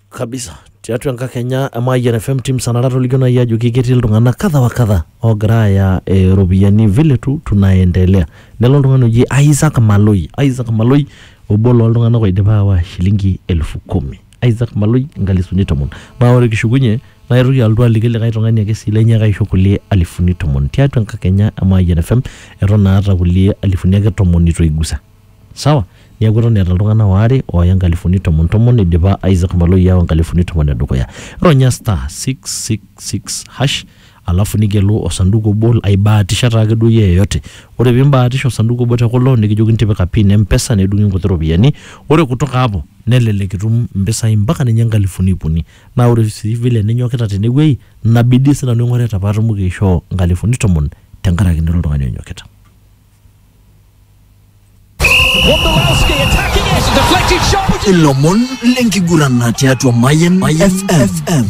kabisa tiatua enkakenya e Mayian FM team sanara tolikio nai ajoki ketii iltung'anak kadha wa kadha oogira aaya eh, iropiyiani vile tu tunaendelea nelo oltung'ani oji Isaac Maloi Isaac Maloi obo looltung'anak oidipa aawa shilingi elfu kumi Isaac Maloi inkalisuni tomon naa ore kishukunye naitoki alotu aliki likae tung'ani ake sii lenye kaisho kulie alifuni tomon tiatua enkakenya e Mayian FM eton aata kulie alifuni ake tomon itu aigusa Sawa? Neaku eton eeta iltung'ana waare ooya nkalifuni tomon tomon eidipa Isaac Maloi aawa nkalifuni tomon e dukuya. Ronya *666# alafu nigelu osanduku obo aibaatisha taake duo iyie yeyote. Ore pee imbaatisha osanduku obo te kulo nikijokini tipika pin e mpesa nedung'i nkuti ropiyiani. Ore kutoka hapo nelelek itum mpisai mpaka ninye nkalifuni iip uni. Naa ore sii vile ninyokita tenewueji ina bidii sii nanu aing'orita paatumoki aishoo nkalifuni tomon tenkaraki nira oltung'ani onyokita. ilomon lenkiguran tiatua Mayan FM.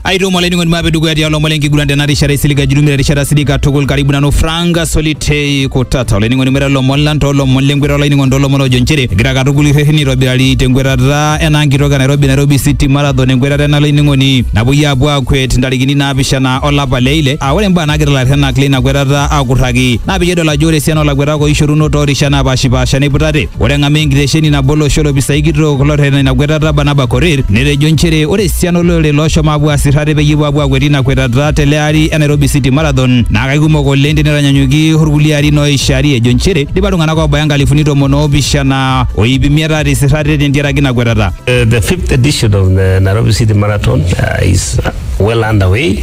aitomo olainining'oni maape dukuya tialo omon lenkiguran tena rishata isiliga jurumira erishata sidai katukul karibu nanu franka solitei kutata olainining'oni mira lomon lang toolomon lenkweta olainining'oni toolomon ojo nchere egira katukul irrereni aitobirari tenkwetata ena nkitok e nairobi nairobi city marathon enkwetata ena olainining'oni napuoi aapuo aakwet ntarikini naapishana olapa le ile Aa ore imbaa naagira ilarrenak leina kwetata aakurraki naa peyie edol ajo ore esiana oolakuetak ooishoruno too rishat naapaashipaasha neiputate. Ore eng'amu e nkitesheni nabo olosho olopisai kitok lorretena ina kwetata Barnaba Korir netejo nchere ore esiana olorere looshomo aapuo aasir ate peyie epuo aapuo aakwet ina kwetata tele ari e Nairobi City Marathon naa kaikumok oleng tenitanyanyuki olkulie arin ooishari ejo nchere eidipa iltung'anak oobaya inkalifuni tomon oopishana o iip imiet aatisir ate tentiaraki ina kwetata. The fifth edition of the Nairobi City Marathon uh, is well underway.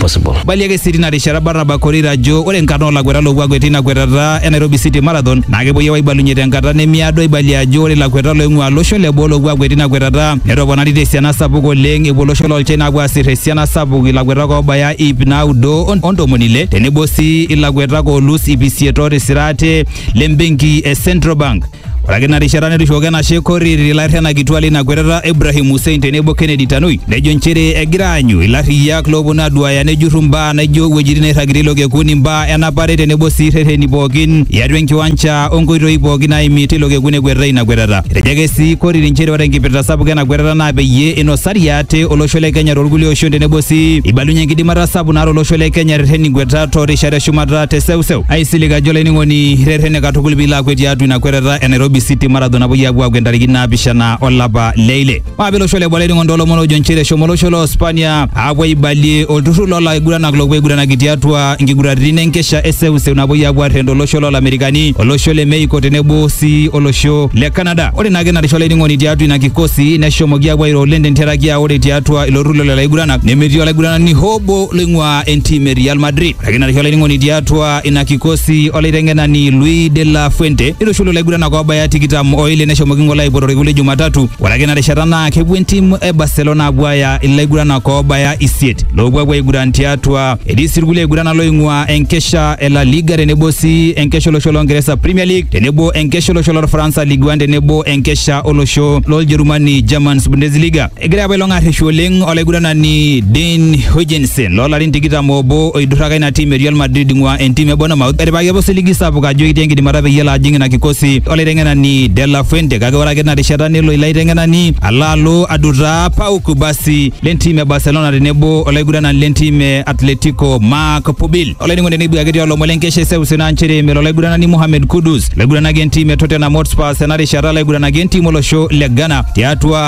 possible. Eibalie ake sii tina rishata Barnaba Korir ajo ore nkarn oo lakuetak loopuo akwet teina kwetata e Nairobi City Marathon naa kepuoi aapuo aibalunye tenkata nemiado eibalie ajo ore lakuetak looing'uaa losho le boo loopuo akwet teina kwetata netoponari te siana sapuk oleng epuo olosho loo China aapuo aasir esiana sapuk ilakuetak oobaya iip naudo o ntomoni ile tenebo sii ilakuetak oolus iip isiet ootisira ate le mbenki e Central Bank. Ore ake ina rishata netushukoki enashe Korir ilairrianak kituak leina kwetata Ibrahim Hussein tenebo Kennedy Tanui nejo nchere egira aanyu ilarriyiak looponu aduaaya nejurru mbaa naijo wuejitin nairragirie ilo kekun, imbaa enapare tenebo sii rreteni pookin iatua enkiwancha o nkoitoi pookin naaimi teilo kekun ekwetitae ina kwetata. Etejo ake sii Korir nchere ore enkipirta sapuk ena kwetata naa peyie inosari ate olosho le Kenya toolkulie oshon tenebo sii eibalunyie enkidimata sapuk naata olosho le Kenya erreten inkwetat too rishat e shumata te seuseu. Aisilig ajo olainining'oni rretene katukul piilo akwet tiatua ina kwetata e Nairobi City Marathon napuoi apuo akwet ntarikini naapishana olapa le ile. Maape olosho le Bwalai ning'ondo olomon ojo nchere eshomo olosho loo Spania apuo aibalie olturrur loo laiguranak loopuo aiguranaki tiatua nkiguraritin enkesha e seuseu napuoi apuo arrend olosho loo Lamerikani, olosho le Mexico tenebo sii olosho le Canada. Ore naake ina risho olainining'oni tiatua ina kikosi neshomoki apuo airo oleng tentiaraki aa ore tiatua ilo turrur lelo aiguranani nemetii olaiguranani hoo obo loing'uaa entim e Real Madrid. Ore ake ina risho olainining'oni tiatua ina kikosi olaiteng'enani Luis de la Fuente neitushulu laiguranak oobaya tikitam oile neshomoki ng'ole aipotoriki le Jumatatu. Ore ake ina rishata naa kepuo entim e Barcelona apuo aaya ilaiguranak oobaya isiet loopuo apuo aiguran tiatua. Etii sii irkulie aiguranak looing'ua enkesha e La Liga tenebo sii enkesha olosho loo Ngeresa Premier League tenebo enkesha olosho lorfaransa Ligue 1 tenebo enkesha olosho loljerumani Germans Bundesliga. Egira apa ilo ng'arreshu oleng olaiguranani Dean Huijsen loolarin tikitam obo oidurraka ina tim e Real Madrid ing'ua entim e Bournemouth etipikaki apa osiligi sapuk ajo ekitii enkidimata peyie elo ajing ina kikosi olaiteng'enani De La Fuente kake ore ake tina rishata nelo ilo aiteng'enani alo alo adutaa Pau Kubasi lentim e Barcelona tenebo olaiguranani lentim e Atletico Marc Pubil. Olainining'oni neibua ketii olomon lenkesha eseuseu naa nchere melo olaiguranani Mohamed Kudus laiguranaki entim e Tottenham Hotspur ena rishata laiguranaki entim olosho le Ghana tiatua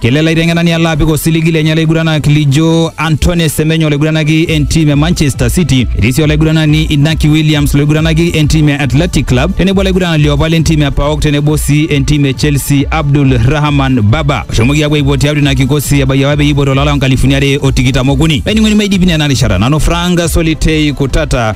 Kelo ele aiteng'enani alo apik osiligi lenye olaiguranak lijo Antoine Semenyo olaiguranaki entim e Manchester City, etii sii olaiguranani Inaki Williams loiguranaki entim e Athletic Club tenebo olaiguranani liopa lentim e PAOK tenebo sii entim e Chelsea Abdul Rahman Baba oshomoki apuo aipot tiatua ina kikosi ebaiki apa peyie eipoto olari loo nkalifuni are o tikitam okuni. Laining'oni maidipina ena rishata nanu Frank Solitei Kutata.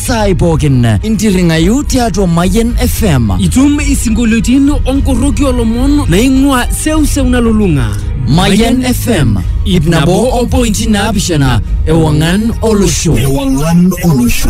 saai pookin intirring'ayu tiatua Mayian FM. Itum isinkolioitin onkorroki olomon naing'ua seuseu nalulung'a. Mayian FM ip nabo o pointi naapishana ewang'an olosho. Ewang'an olosho.